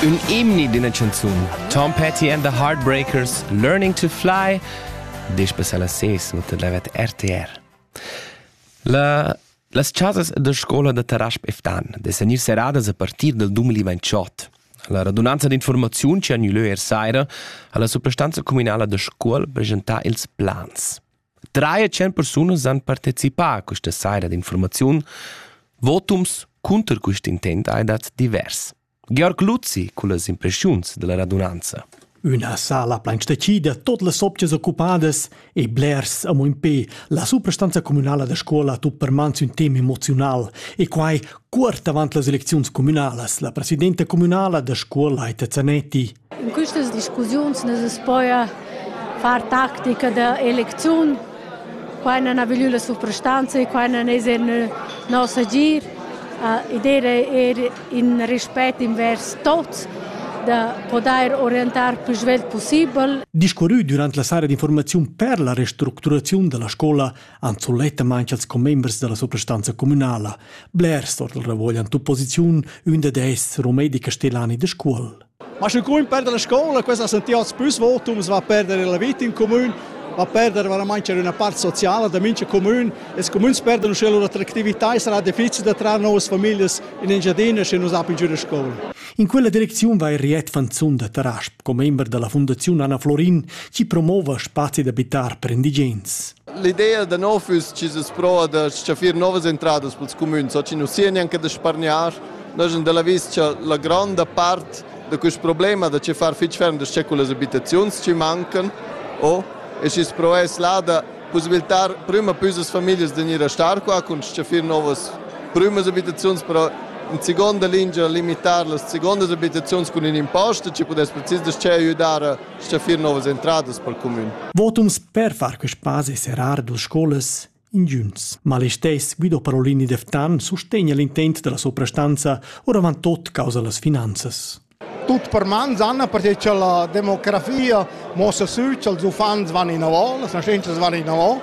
Ün emni d'üna chanzun. Tom Petty and the Heartbreakers, Learning to Fly, disch besella ses no te levet RTR. La Las chasas da scola da Tarasp Eftan de senir seradas a partir del 2028. La radunanza d'informaziun che ha gnü lö er saira ha la suprastanza communala da Scuol presentà ils plans. Trais e tschient persunas han participà questa saira d'infurmaziun. Votums cunter quest intent hai dat divers. Georg Luzzi cullas impressiuns della radunanza. Üna sala plain stecida, tot las optias occupadas e blers amo in pe. La suprastanza communala da scuola ha tut per mans ün tema emozional e quai cuort avant las elecziuns communalas. La presidenta communala da scuola Aita Zanetti In quistas discussiuns nu's poja far tactica da elecziun. Quai non ha gnü la suprastanza e quai non es in nos agir. Id eira eir in respet invers tuots da podair orientar pü svelt pussibel. Discurrü dürant la sara d'informaziun per la restructuraziun da la scoula han sulettamaing els commembers da la suprastanza cumünala. Blers or dal ravuoglian d'opposiziun, ün dad esser Rumedi Castellani da Scuol. Ma sche grun perder la scola, questa ha sentì oz pus votum, va a perdere la vita in comune, va a perdere veramente c'è una parte sociale da mincha comune e i comuni perdono sche l'attractività sarà difficile da trarre nuove famiglie in Engiadina se non sappiano giù a scuola. In quella direczione va il Riet Fanzun da Tarasp, member della Fondazione Anna Florin, ci promuove spazi d'abitare per indigens. L'idea da nov es chi es pro da stgaffir novas entradas pels comüns, oggi nu sia neanche da spargnar Noi sun da l'avis cha la gronda part da quist problema da che far fich ferm das che cullas abitaziuns chi mancan o e schi's provess là da pussibiltar prüma püsas famiglias da gnir a star qua cun s-chaffir novas prümas abitaziuns, però in seconda lingia limitar las secondas abitaziuns cun ün impost, chi pudess precis das che aiüdar a s-chaffir novas entradas pel cumün. Votums per far quist spazi serar duas scolas Ingiüns malistess Guido Parolini Deftan sustegna l'intent della suprastanza oravant tot causa las finanzas. Tut per mans, Anna, perché che la demografia mossa sü che els uffants van in avò, las nascentas van in avò.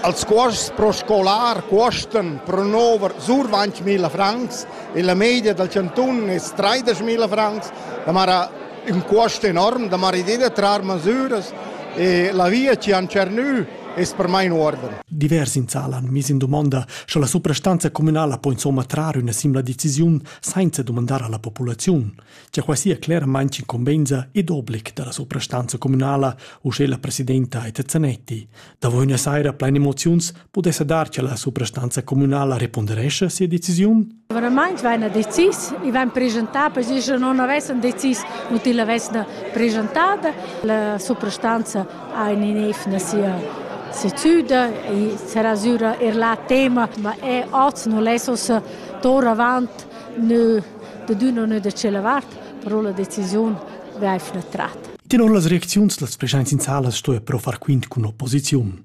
Als cuosts pro scolar cuosten pro nover sur 20.000 francs e la media dal cantun è 30.000 francs, da mara un cost enorm, da mara idea da trar masüras e la via ci han cernü Es per mai in uorden. Divers in sal han miss in dumonda, sche la suprastanza communala po insomma trar üna simla decisiun senza dumandar alla populaziun, che qua sia claramente incombenza ed obblic dalla suprastanza communala, u sche la presidenta Eta Zanetti. Davo üna saira plein emoziuns pudesse dar che la suprastanza communala reponderesce sia decisiun? Veramaints vaina decis, i vain preschantà per si, sche non avessan decis, nu til avesna preschantada. La suprastanza ha in inefna sia sezüda e sarà sura er là tema, ma e oz nu lessas tor avant nö da d'üna nö da tschella vart, però la decisiun vaifna trat. Tenor las reacziuns las preschaints in sala stoja però far quint cun opposiziun.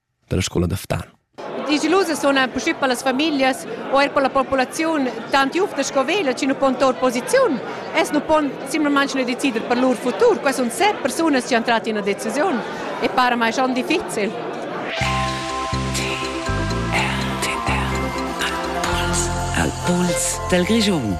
dalla scola da Ftan. Digilusas suna puspei per las famiglias o er per la populaziun tant jufta sco veglia chi nu pon tour posiziun. Es nu pon simplamaing nu decider per lur futur. Quai sun set persunas chi han trat ina decisiun e para mai schon difficil. Al puls dal Grischun.